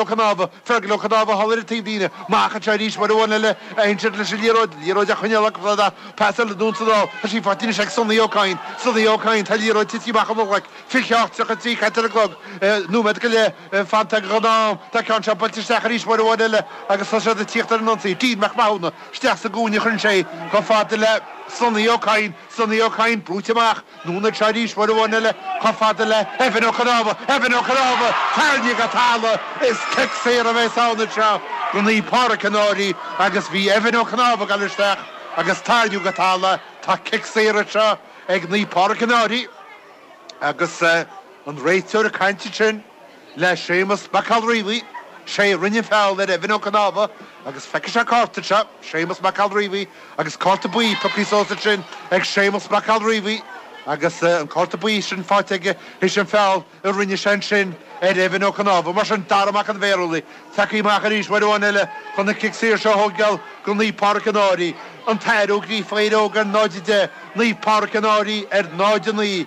Ó Conámha, Fergal Ó Conámha thall ar an taobh daoine amach anseo arís uair amháin eile a insilt leis an liathróid, liathróid a choinneáil agus rud a, pas eile dún sa dol, tá sí faighte anois ag Sonny Ó Cadhain, Sonny Ó Cadhain, tá liathróid tití amach óna ghlaic, 28:33 caite ar an gclog, nóiméad go leith fanta ag an am, tá ceann seo buailte isteach arís uair amháin eile agus tá siad ag tíocht ar an ionsaí, Dean Mac Mathúna isteach sa gcúinne, chuireann sé chomh fada le Sonny Ó Cadhain, Sonny Ó Cadhain brúite amach, anonn anseo arís uair amháin eile chomh fada le Evan Ó Cnámha! Evan Ó Cnámha! Tarraingíodh go talamh! Is cic saor a bheas ann anseo do Naomh Pádraig an Fhairche agus bhí Evan Ó Cnámha ag dul isteach agus tarraingíodh go talamh, tá cic saor anseo ag Naomh Pádraig an Fhairche agus an réiteoir ag caint ansin. le Séamus Mac Giolla Riabhaigh, sé a rinne an feall ar Evan Ó Cnámha agus feicfidh sé cárta anseo, Séamus Mac Giolla Riabhaigh agus cárta buí piocaí suas ansin ag Séamus Mac Giolla Riabhaigh agus an cárta buí sin faighte aige th'éis an feall a rinne sé ansin ar Evan Ó Cnámha. Mar sin, Dara Mac an Bhearshúiligh, tiocfaidh amach arís uair amháin eile chun an cic saor seo a thógáil do Naomh Pádraig an Fhairche, An tAthair Ó Gríofa, Éire Óg ar 0:10, Naomh Pádraig an Fhairche ar 0:09.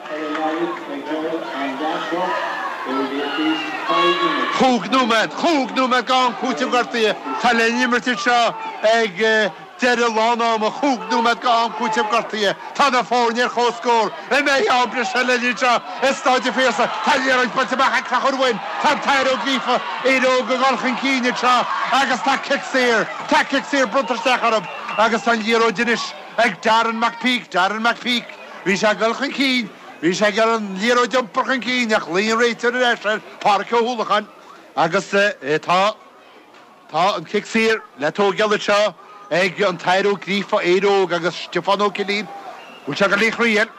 Chúig nóiméad! Chúig nóiméad d'am cúiteamh gortaithe atá le n-imirt anseo ag deireadh lán ama. Chúig nóiméad d'am cúiteamh gortaithe. Tá na foirne ar chomhscór. An mbeidh am breise linn anseo i Stáid an Phiarsaigh? Tá an liathróid buailte amach ag Conchúr, tá An tAthair Ó Gríofa Éire Óg ag dul chun cinn anseo agus tá cic saor. Tá cic saor bronnta isteach orthu agus tá an liathróid anois ag Darren McPeake. Darren McPeake. Bhí sé ag dul chun cinn. Bhí sé ag iarraidh an liathróid a iompar chun cinn ach ghlaoigh an réiteoir ar ais ar Pháraic Ó hUallacháin agus tá, tá an cic saor le tógáil anseo ag an tAthair Ó Gríofa, Éire Óg agus Stiofán Ó Cillín. Bhfuil sé ag dul é a thriail?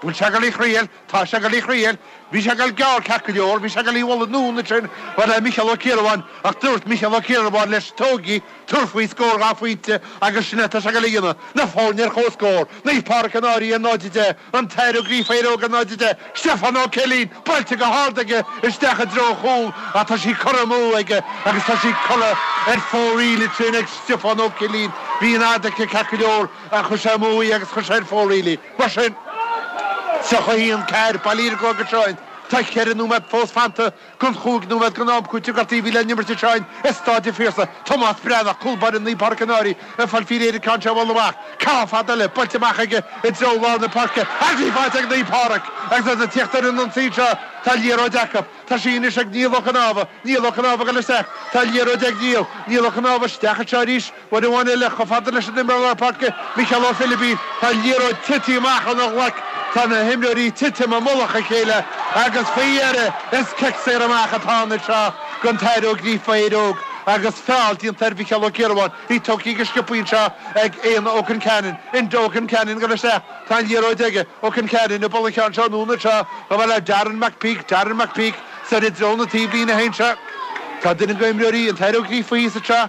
Bhfuil sé ag dul é a thriail? Tá sé ag dul é a thriail. Bhí sé ag dul gearr ceart go leor. Bhí sé ag dul í a bhualadh anonn ansin, mar le Micheál Ó Ciarabháin ach dúirt Micheál Ó Ciarabháin leis, Tóg í! Tabhair faoi scór dhá phointe agus sin é atá sé ag dul a dhéanamh, na foirne ar chomhscór, Naomh Pádraig an Fhairche 0-10, An tAthair Ó Gríofa Éire Óg 0-10, Stiofán Ó Cillín buailte go hard aige isteach i dtreo an chúl ach tá sí curtha amú aige agus tá sí curtha ar fóraoil go tréan ag Stiofán Ó Cillín, bhí an fhad aici ceart go leor ach chuir sé amú í agus chuir sé ar fóraoil í. Mar sin. 31, Caer, Baile Íregáin go Seáin, tá cheithre nóiméad fós fanta den chúig nóiméad den am cúitimh gortaithe a bhí le n-imirt anseo i Stáid an Phiarsaigh, Tomás Breathnach, cúl báire Naomh Pádraig an Fhairche, ag fáil faoi réir ar an gceann seo a bhualadh amach. Ceann fada eile buailte amach aige i dtreo lár na páirce agus í faighte ag Naomh Pádraig agus iad ag tíocht ar an ionsaí anseo. Tá an liathróid acu. Tá sí anois ag Niall Ó Conámha. Niall Ó Conámha, ag dul isteach. Tá an liathróid ag Niall. Niall Ó Conámha, isteach anseo arís. B'in amháin eile chomh fada leis an imreoir Parker, Micheál Ó Philibín, tá an liathróid tite amach óna ghlaic, tá na himreoirí ag titim i mullach a chéile agus faoi dheireadh is cic saor amach atá ann anseo gon tAthair Ó Gríofa, Éire Óg, agus feall déanta ar Mhicheál Ó Ciarabháin, í tógtha go sciobtha anseo ag Éanna Ó Concheanainn, Enda Ó Concheanainn go isteach, tá an liathróid aige, Ó Concheanainn ag dul an cheann seo in ionad seo chomh fada le Darren McPeake, Darren McPeake, soir i dtreo na taobhlíne féin seo, tá duine go imreoirí an tAthair Ó Gríofa thíos anseo,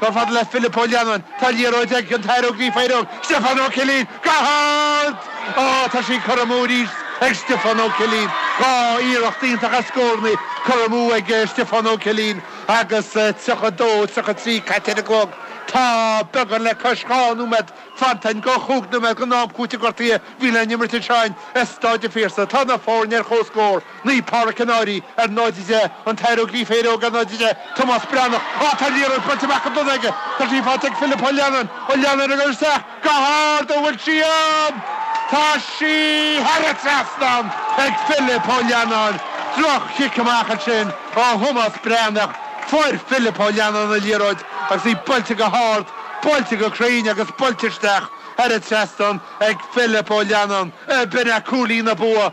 Chomh fada le Philip Ó Leannáin. Tá an liathróid ag an tAthair Ó Gríofa, Éire Óg, Stiofán Ó Cillín. Go hard! Ó, tá sí curtha amú arís ag Stiofán Ó Cillín. Dhá iarracht iontach as scórannaí curtha amú ag Stiofán Ó Cillín agus 32, 33 caite ar an gclog. Tá beagán le cois dhá nóiméad fanta ann de chúig nóiméad den am cúitimh gortaithe a bhí le n-imirt anseo i Staid an Phiarsaigh. Tá na foirne ar chomhscór. Naomh Pádraic an Fhairche ar 0:10, An tAthair Ó Gríofa, Éire Óg ar 0:10, Tomás Breathnach ó tá an liathróid buailte amach go dona aige. Tá sí faighte ag Philip Ó Leannáin Ó Leannáin ag dul isteach go hard an bhfuil sí ann? Tá sí thar an trasnán ag Philip Ó Leannáin droch-chic amach ansin ó Thomás Breathnach fuair Philip Ó Leannáin an liathróid agus í buailte go hard buailte go cruinn agus buailte isteach thar an trasnán ag Philip Ó Leannáin ab in é cúilín na bua